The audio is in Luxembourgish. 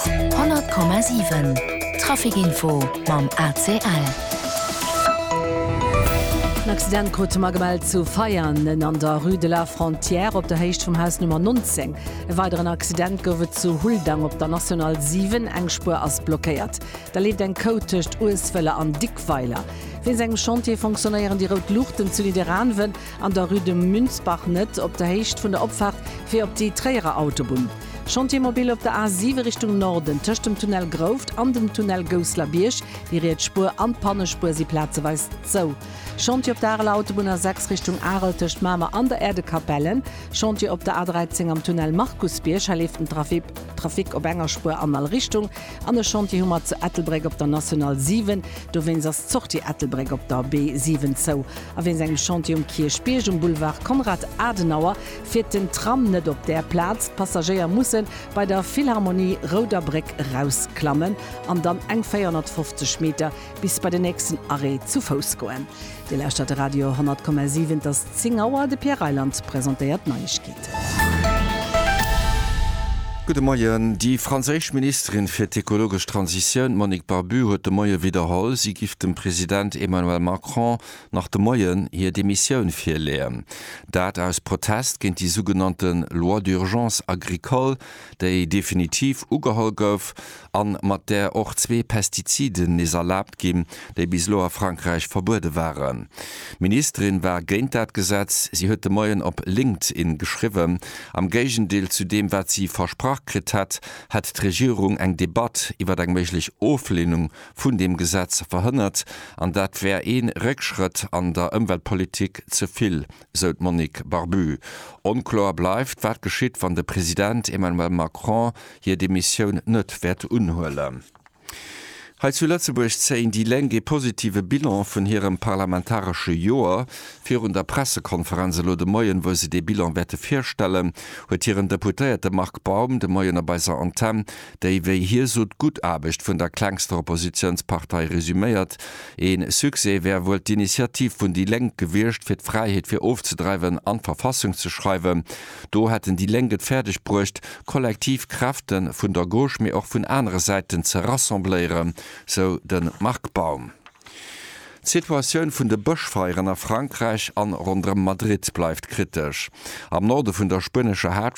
100,7 Traficinfo mam ACL. En Accident krute mer gemellt zu Veianen an der Rue de la Frontière op der Héicht vum Haus Nummer 19. E weideren Accident gouf et zu Huldang op der National 7. Eng Spuer ass blockéiert. Da leeft eng Côte tëscht Uesweller an Dickweiler. Wéinst engem Chantier fonctionnéieren déi rout Luuchten zu Nidderaanwen. An der Rue de Münzbach net op der Héicht vun der Opfaart fir op déi Tréierer Autobunn. Chantier mobile op der A 7 Richtung Norden, tëscht dem Tunnel Grouft an dem Tunnel Gousselerbierg. Déi riets Spuer an d'Pannespuer si plazeweis zou. Chantier op der Areler Autobunn A 6 Richtung Arel tëscht Mamer an der Äerdekapell. Chantier op der A 13 am Tunnel Markusbierg. Hei leeft den Trafic op enger Spuer an all Richtung. An e Chantier hu mer zu Ettelbréck op der National 7. Dowéinst ass d'Sortie Ettelbréck op der B7 zou. A wéinst engem Chantier um Kierchbierg um Boulevard Konrad Adenauer fiert den Tram net op där Plaz. D'Passagéier musse bei der Philharmonie Rouder Bréck erausklammen an dann eng 450 Meter bis bei den nächsten Arrêt zu Fouss goen. Dir lauschtert de Radio 10,7, et ass 10 Auer. De Pierre Reyland presentéiert d'Neiegkeeten. Gudde Moien. Déi franséisch Ministerin fir d'ekologesch Transitioun, d'Monique Barbut, huet de Moie widderholl, si giff dem President Emmanuel Macron nach de Moien hir Demissioun virleeën. Dat aus Protest géint déi sougenannte Loi d'urgence agricole, déi definitiv ugeholl gouf a mat där och zwee Pestiziden nees erlaabt ginn, déi bis elo a Frankräich verbuede waren. D'Ministerin war géint dat Gesetz. Si huet de Moien op LinkedIn geschriwwen, am Géigendeel zu deem, wat si versprach kritt hätt, hätt d'Regierung eng Debatt iwwer eng méiglech Oflehnung vun deem Gesetz verhënnert, an dat wär ee Réckschrëtt an der Ëmweltpolitik, ze vill sou d'Monique Barbu. Onkloer bleift, wat geschitt, wann de President Emmanuel Macron hir Demissioun net wäert unhuelen. Hei zu Lëtzebuerg zéien déi Lénk ee positive Bilan vun hirem parlamentaresche Joer. Virun der Pressekonferenz elo de Moien, wou se dee Bilan wäerte virstellen, huet hiren Deputéierte Marc Baum de Moien op eiser Antenn déi, wéi hie sot, d'gutt Aarbecht vun der klengster Oppositiounspartei resuméiert. Ee Succès wär wuel d'Initiativ vun déi Lénk gewiescht, fir d'Fräiheet fir ofzedreiwen an d'Verfassung ze schreiwen. Do hätten déi Lénk et fäerdeg bruecht, kollektiv Kräfte vun der Gauche, mee och vun anere Säiten ze rassembléieren, sou de Marc Baum. D'Situatioun vun de Bëschfeieren a Frankräich an ronderëm Madrid bleift kritesch. Am Norde vun der spuenescher